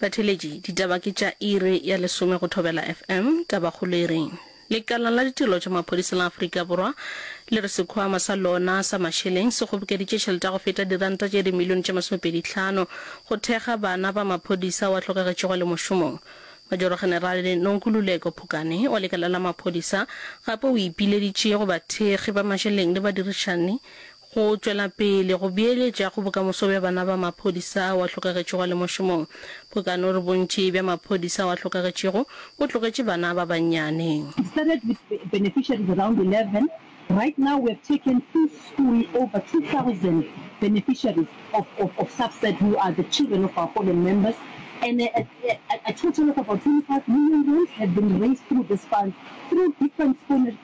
Batheeletši, Ditaba ke tša iri ya lesome go Thobela FM. Tabakgolo e reng? Lekala la Ditirelo tša Maphodisa la Afrika Borwa le re sekhwama sa lona sa mašeleng se kgobokeditše tšhelete ya go feta diranta tše dimilione tše masomepedi tlhano go thekga bana ba maphodisa wa hlokagetšego a le mošomong. Majoro-generale Nonkululeko Phukane wa lekala la maphodisa gape o ipileditše go bathekgi ba mašeleng le badirišani Go tšwela pele go beeletša go bokamoso bja bana ba maphodisa ao a hlokagetšego a le mošomong, bokano re bontši bja maphodisa ao a hlokagetšego bo tlogetše bana ba bannyane. It started with beneficiaries around 11, right now we have taken in school over 2000 beneficiaries of of of SAFSAT who are the children of our fallen members and a a a total of about 25 million rands have been raised through this fund through different spon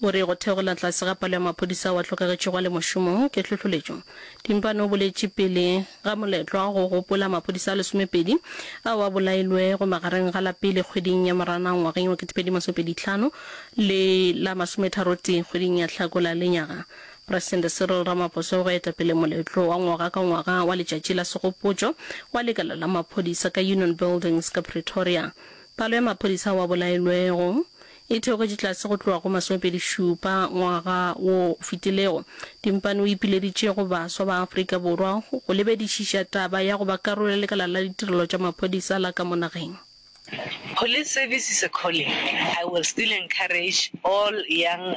O re go theogela tlase ga palo ya maphodisa ao a hlokagetšego a le mošomong ke tlhohloletšo. Timpane o boletše pele ga moletlwa go gopola maphodisa a lesomepedi ao a bolailwego magareng ga la pele kgweding ya Moranang ngwageng wa ketepedi masomepedi tlhano le la masometharotee kgweding ya Hlakola lenyaga Presidente Cyril Ramaphosa o go eta pele moletlo wa ngwaga ka ngwaga wa letšatši la segopotšo wa lekala la maphodisa ka Union Buildings ka Pretoria. Palo ya maphodisa ao a bolailwego e theogetše tlase go tloga go masomepedi šupa ngwaga wo o fetilego. Timpane o ipileditše go baswa ba Afrika Borwa go lebedišiša taba ya go ba karolo ya lekala la ditirelo tša maphodisa la ka mo nageng. Police service is a calling, I will still encourage all young.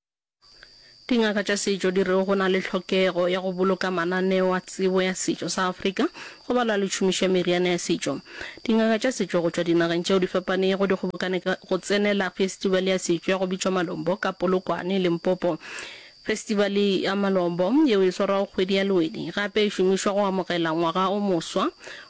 Dingaka tša setšo di re go na le tlhokego ya go boloka mananeo a tsebo ya setšo sa Afrika go balwa le tšhomišo ya meriana ya setšo. Dingaka tša setšo go tšwa dinageng tšeo di fapanego di kgobokane go tsenela festivale ya setšo ya go bitšwa Malombo ka Polokwane, Limpopo. Festivale ya Malombo, yeo e swarwago kgwedi ya Lwedi, gape e šomišwa go amogela ngwaga o moswa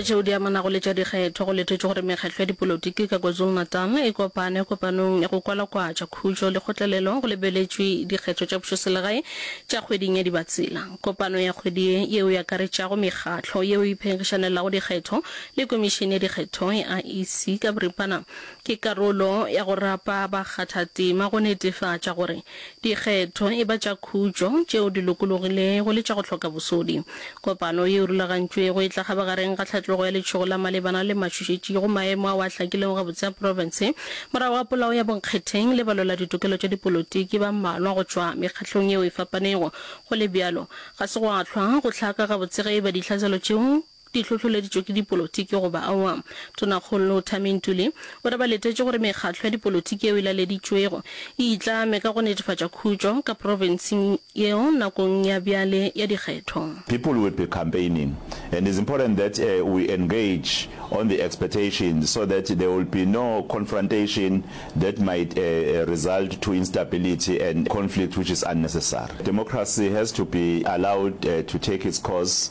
go tšeo di amanago le tša dikgetho go lethetšwe gore mekgatlo ya dipolotiki ka kwazulu-natal e kopane kopanong ya go kwalakwatša khutšo le kgotlelelo go lebeletšwe dikgetho tša pušoselegae tša kgweding ya dibatsela kopano ya kgwedi ye yeo e akaretšago mekgatlo yeo e phenkgišanelago dikgetho le komišene ya dikgetho ya iec ka boripana Ke karolo ya go rapa bakgathatema go netefatša gore dikgetho, e ba tša khutšo, tšeo di lokologilego le tša go hloka bosodi. Kopano ye e rulagantšwego e tla kgabagareng ga tlhatlogo ya letšhogo la malebana le matšhošetši go maemo ao a hlakilego gabotse a profense morago ga polao ya bonkgetheng le balweladitokelo tša dipolotiki ba mmalwa go tšwa mekgahlong yeo e fapanego. Go le bjalo, ga se gwa hlwa go hlaka gabotse ge e ba ditlhaselo tšeo di hlohloleditšwe ke dipolotiki goba aowa. Tonakgolo Tami Ntuli o re ba letetše gore mekgatlo ya dipolotiki yeo e laleditšwego e itlame ka go netefatša khutšo ka profenseng yeo nakong ya bjale ya dikgetho. People will be campaigning and it's important that we engage on the expectations so that there will be no confrontation that might result to instability and conflict which is unnecessary. Democracy has to be allowed to take its course.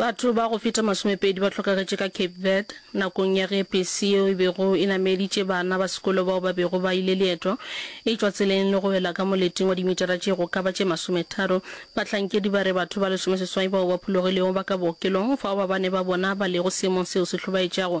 Batho ba go feta masomepedi ba hlokagetše ka Cape Verde nakong ya ge pesi yeo e bego e nameditše bana ba sekolo bao ba bego ba ile leeto e tšwa tseleng le go wela ka moleting wa dimitara tše go ka ba tše masometharo. Bahlankedi ba re batho ba lesomeseswai bao ba phologilego ba ka bookelong fao ba bane ba bona ba lego seemong seo se hlobaetšago.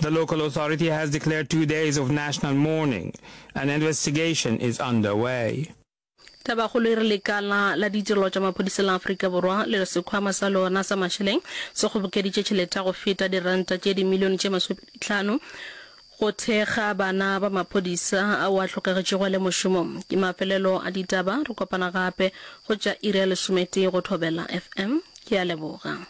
The local authority has declared two days of national mourning. An investigation is underway. Tabakgolo e re lekala la ditirelo tša maphodisa la Afrika Borwa le re sekhwama sa lona sa mašeleng se kgobokeditše tšhelete ya go feta diranta tše dimilione tše masomepedi tlhano go thekga bana ba maphodisa ao a hlokegetšego a le mošomong. Ke mafelelo a ditaba, re kopana gape go tša iri ya lesometee go Thobela FM. Ke a leboga.